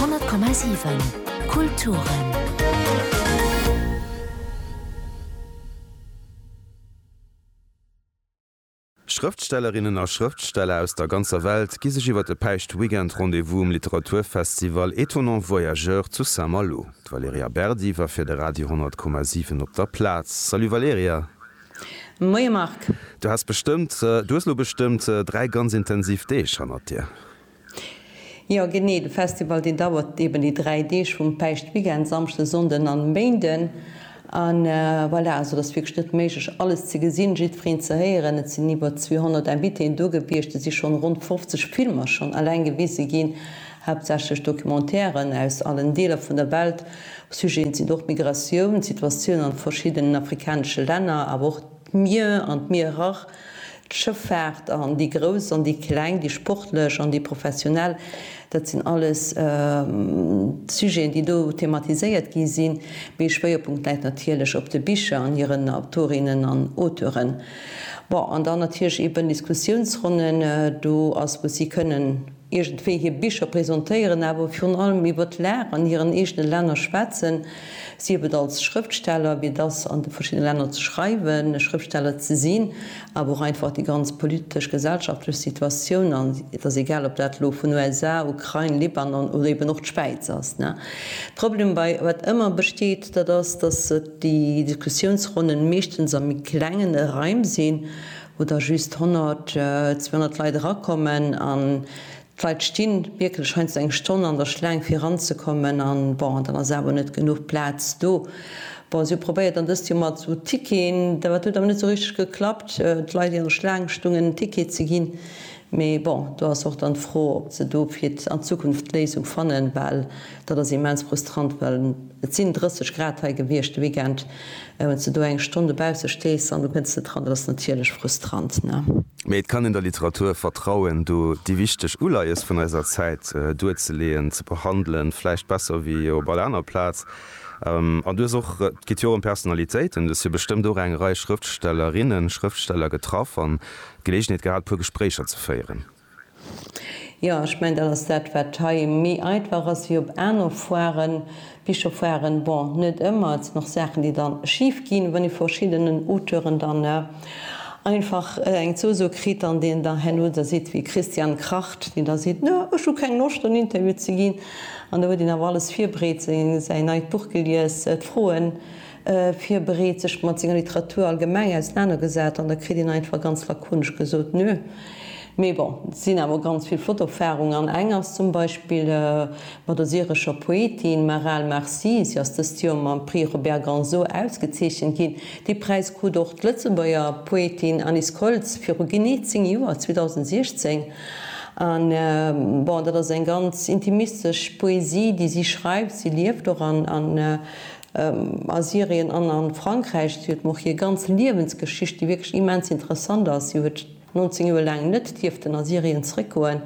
100,7 Kulturen Schrëftstellerinnen a Schrëftsteller aus der ganzer Welt gi sech iwwer de Päischt-Weekend Rendez-vous um Literaturfestival Étonnants Voyageurs zu Saint-Malo. D'Valerija Berdi war fir de Radio 100,7 op der Plaz. Salut Valerija. Moie Marc. Du has bestëmmt, du hues elo bestëmmt dräi ganz intensiv Deeg hannert dir. Jo genee, de Festival deen dauert eben déi 3 Deeg vum Päischtweekend, Samschden, Sonnden an Méinden. An voilà, also et ass wierklech net méiglech alles ze gesinn, jiddwereen ze héieren. Et sinn iwwer 200 Invitéen do gewiescht, et si schonn ronn 50 Filmer schonn eleng gewise ginn, haaptsächlech Documentairen aus allen Deeler vun der Welt. Sujeten sinn och Migratioun, d'Situatioun an verschiddenen afrikanesche Länner, awer och d'Mier an d'Mierer. D'Schëffaart an déi Grouss an déi Kleng, déi Sportlech an déi Professionell, dat sinn alles Sujeten, déi do thematiséiert gi sinn. Mee Schwéierpunkt läit natierlech op de Bicher an hiren Autorinnen an Auteuren. Bon, an dann natierlech ee bënn Diskussiounsronnen do ass, wou si kënnen. iergendwéi hir Bicher presentéieren, awer virun allem iwwer d'Lag an hiren eegene Länner schwätzen, sief et als Schrëftsteller, wéi et ass an de verschiddene Länner ze schreiwen, e Schrëftsteller ze sinn, awer och einfach déi ganz politesch, gesellschaftlech Situatioun, an et ass egal, ob dat elo vun USA, Ukrain, Libanon oder eeben och d'Schwäiz ass. Problem bei wat ëmmer besteet, dat ass, datt déi Diskussiounsronnen meeschtens a méi klengen Raim sinn, wou da just 100, 200 Leit erakommen an d'Leit sti wierklech heiansdo eng Stonn an der Schlaang fir eranzekommen an, bon, dann ass awer net genuch Plaz do. Bon, si hu probéiert dann dëst Joer mat sou Ticketen, dat huet awer net sou richteg geklappt, d'Leit, déi an der Schlaang stungen, en Ticket ze ginn. Mee bon, do ass och dann d'Fro, ob se do fir an Zukunft d'Léisung fannen, well Dat ass immens frustrant, well et sinn 30 Grad hei gewiescht de Weekend. A wann s de do eng Stonn dobausse stees an du kënns net dran, dat ass natierlech frustrant, ne? Mee et kann een der Literatur vertrauen, do déi wichteg Uleies vun eiser Zäit duerzeleeën, ze behandelen, vläicht besser wéi op all aner Plaz. An du hues och, et geet jo och ëm Personalitéiten, du hues jo bestëmmt och eng Rei Schrëftstellerinnen, Schrëftsteller getraff an d'Geleegenheet gehat, e puer Gespréicher ze féieren. Jo, ech mengen, dat ass dat, wat hei méi einfach ass wéi op aner Foiren. Bicherfoiren, bon, net ëmmer, et sinn och Saachen, déi dann schif ginn, wann ee vu verschiddenen Auteuren dann einfach eng Zousoo kritt an deen da herno da sidd wéi Christian Kracht, deen da seet, Na, ech hu keng Loscht, en Interview ze ginn. An da huet een awer alles virbereet, säin neit Buch gelies, d'Froen. virbereet, sech mat senger Literatur allgemeng ausenanergesat an da kritt een einfach ganz lakonesch gesot, Nö. Mee bon, et sinn awer ganz vill flott Erfarungen an eng ass zum Beispill mat der syrescher Poetin Maral Marsi. Si ass dëst Joer mam Prix Robert Ganzo ausgezeechent ginn. Dee Präis krut och d'Lëtzebuerger Poetin Alice Koltz viru genee zéng Joer, 2016. An bon, dat ass eng ganz intimistesch Poesie, déi si schreift. Si lieft och an. A Syrien an a Frankräich, si huet mer och hir ganz Liewensgeschicht, déi wierklech immens interessant ass, si huet 19 Joer laang net dierften a Syrien zréckgoen,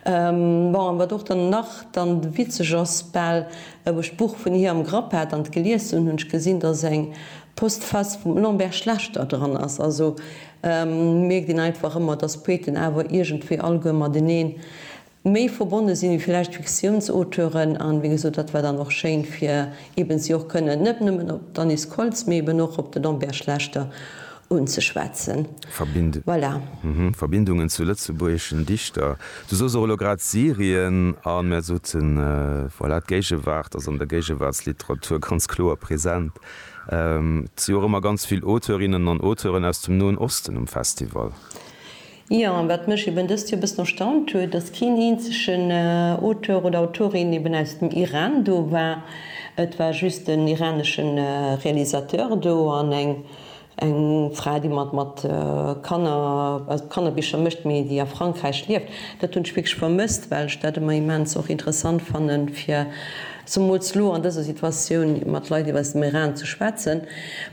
bon, an wat och dann nach dann witzeg ass, bal, wou ech d'Buch vun hir am Grapp hat an et gelies hunn, hunn ech gesinn, dass eng Postface vum Lambert Schlechter dran ass. Also mierkt een einfach ëmmer, dass Poeten awer iergendwéi alleguer mateneen méi verbonne sinn, wéi villäicht d'Fiktiounsauteuren, an wéi gesot, dat war dann och schéin fir eben si och kënnen net nëmmen op d'Anis Koltz, mee eben och op de Lambert Schlechter unzeschwätzen. Voilà. Verbindungen zu lëtzebuergeschen Dichter, du soos och elo grad Syrien, a mär soten, voilà, d'Géigewaart ass an der Géigewaartsliteratur ganz kloer present. Et si och ëmmer ganz vill Auteurinnen an Auteuren aus dem Noen Osten um Festival. Jo, an wat mech eben dëst Joer e bëssen erstaunt huet, dass keen eenzegen Auteur oder Autorin eben aus dem Iran do war. Et war just en iranesche Realisateur do an eng eng Fra, déi mat mat Kanner, also mat Kannerbicher mécht, mee déi a Frankräich lieft. Dat hunn ech wierklech vermësst, well ech dat ëmmer immens och interessant fannen, fir Zemools lo an dëser Situatioun mat Leit iwwer dem Iran ze schwätzen.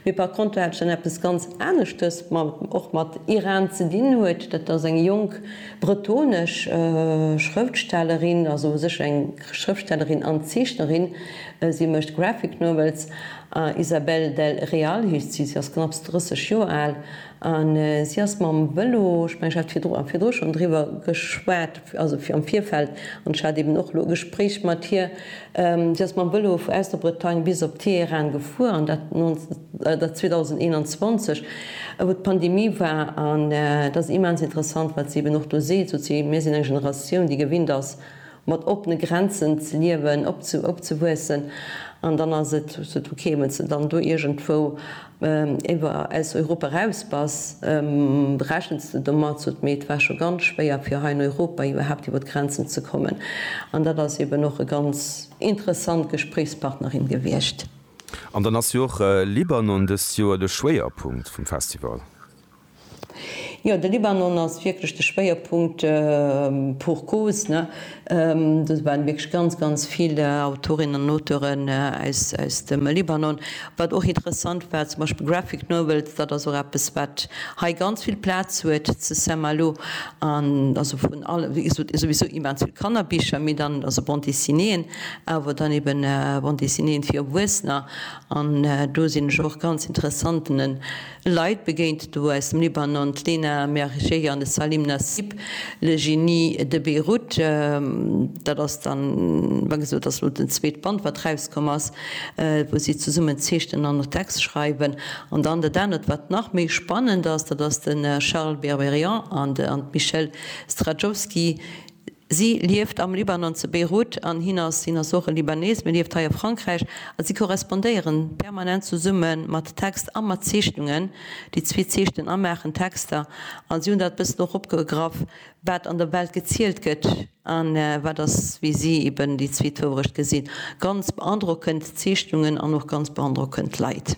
Mee par conter hat ech dann eppes ganz aneschtes, wat och mat Iran ze dinn huet. Dat ass eng jonk bretonesch Schrëftstellerin, also u sech eng Schrëftstellerin an Zeechnerin. Si mécht Graphic Novels. Isabel del Real heescht si. Si ass knapps 30 Joer al. A si ass mam Vëlo, ech mengen, ech hat virdru virdru schonn driwwer geschwat, also am Virfeld, an ech hat eeben och elo e Gespréich mat hir, si ass mam Vëlo vu aus der Bretagne bis op Teheran gefuer, an dat 2021, wou d'Pandemie war. An dat ass immens interessant, wat si eeben och do seet, sot si, mir sinn eng Generatioun, déi gewinnt ass, mat oppene Grenzen ze liewen, opzewuessen, an dann ass et sot ok, wann s de dann do iergendwou iwwer aus Europa eraus bass, rechens de domat, sot mee et war scho ganz schwéier fir hei an Europa iwwerhaapt iwwer d'Grenzen ze kommen. An dat ass eben och e ganz interessant Gespréichspartnerin gewiescht. An dann ass jo och Libanon dëst Joer de Schwéierpunkt vum Festival. Jo, de Libanon ass wierklech de Schwéierpunkt pour cause. Do waren wierklech ganz, ganz vill Autorinnen an Auteuren aus dem Libanon. Wat och interessant war, zum Beispill Graphic Novels, dat ass och eppes, wat hei ganz vill Plaz huet zu Saint-Malo. An also vun alle, wéi gesot, souwisou immens vill Kannerbicher, mee dann also Bande Dessinéeën, awer dann eben Bande Dessinéeën fir Erwuessener. An do sinn ech och ganz interessanten, Leit begéint do aus dem Libanon, d'Lena Mergé an de Salim Nassib, Le Genie de Beyrouth. Dat ass dann, wa gesot, dat ass elo den zweete Band, wat erauskomm ass, wou si zesummen zeechnen an och Text schreiwen. An dann dat anert, wat nach méi spannend ass, dat ass de Charles Berberian an d'Michèle Straczowski, Si lieft am Libanon, zu Beirut, an hien ass, hien ass och e Libanees, mee lieft hei a Frankräich, a si korrespondéiere permanent zesumme mat Text a mat Zeechnungen. Déi zwee zeechnen a maachen Texter, a si hunn dat e bëssen och opgegraff, wat an der Welt gezielt gëtt a wat ass, wéi si eben déi zwee d'Wourecht gesinn. Ganz beandrockend Zeechnungen an och ganz beandrockend Leit.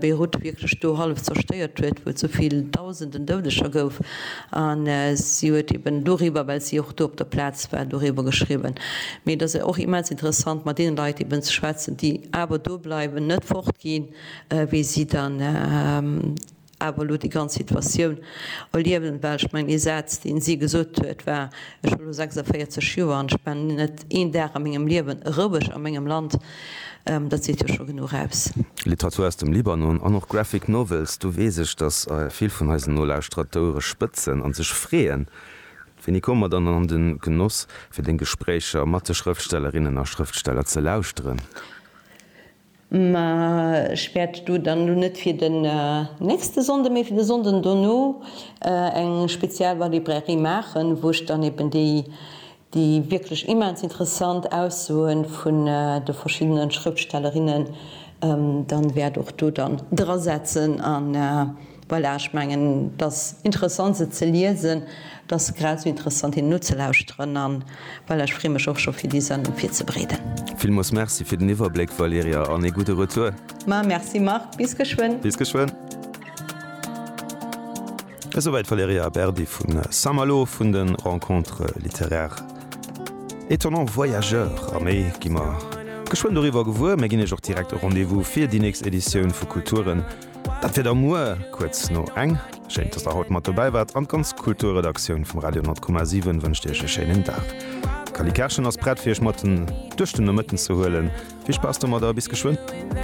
Beirut wierklech do hallef zerstéiert huet, wou et sou vill Dausenden Doudeger gouf. A si huet eben doriwwer, well si och do op der Plaz war, doriwwer geschriwwen. Mee et ass och immens interessant mat deene Leit eben ze schwätzen, déi awer do bleiwen, net fort ginn, wéi si dann, awer elo déi ganz Situatioun erliewen, well ech mengen, ee Saz, dee si gesot huet, war, Ech hu lo 46 Joer an ech war net een Dag a mengem Liewen roueg a mengem Land. Dat seet jo scho genuch aus. Literatur aus dem Libanon an och Graphic Novels, do weess ech, datt vill vun eisen Nolauschterer d'Ouere spëtzen a sech freeën. Wéini komme mer dann an de Genoss, fir deng Gespréicher mat de Schrëftstellerinnen a Schrëftsteller ze lauschteren? Mä ech wäert do dann elo net fir den nächste Sonnde, mee fir de Sonnden dono eng speziell Valibrairie maachen, wou ech dann eben déi, déi wierklech immens interessant Aussoe vun de verschiddene Schrëftstellerinnen dann wäert och do dann drasetzen an, Voilà, ech mengen et ass interessant se ze liesen, et ass grad esou interessant hinnen nozelauschteren an voilà, ech freeë mech och scho fir déi Sendung virzebreeden. Villmols Merci fir den Iwwerbléck Valerija an ee gudde Retour. Ma Merci Marc, bis geschwënn. Bis geschwënn. Esouwäit d'Valerija Berdi vu Saint-Malo vun de Rencontres littéraires étonnants voyageurs. A méi gi mer geschwënn doriwwer gewuer. Mir ginn Iech och direkt e Rendez-vous fir déi nächst Editioun vu Kulturen. Dat fir der muer kuerz no eng. Schéin, dass der haut mat dobäi waart, an d'ganz Kulturredaktioun vum Radio 10,7 wënscht Iech e schéinen Dag. D'Cally Kerschen ass prett, fir Iech mat duerch den Nomëtten ze huelen. Vill Spaass domadder a bis geschwënn!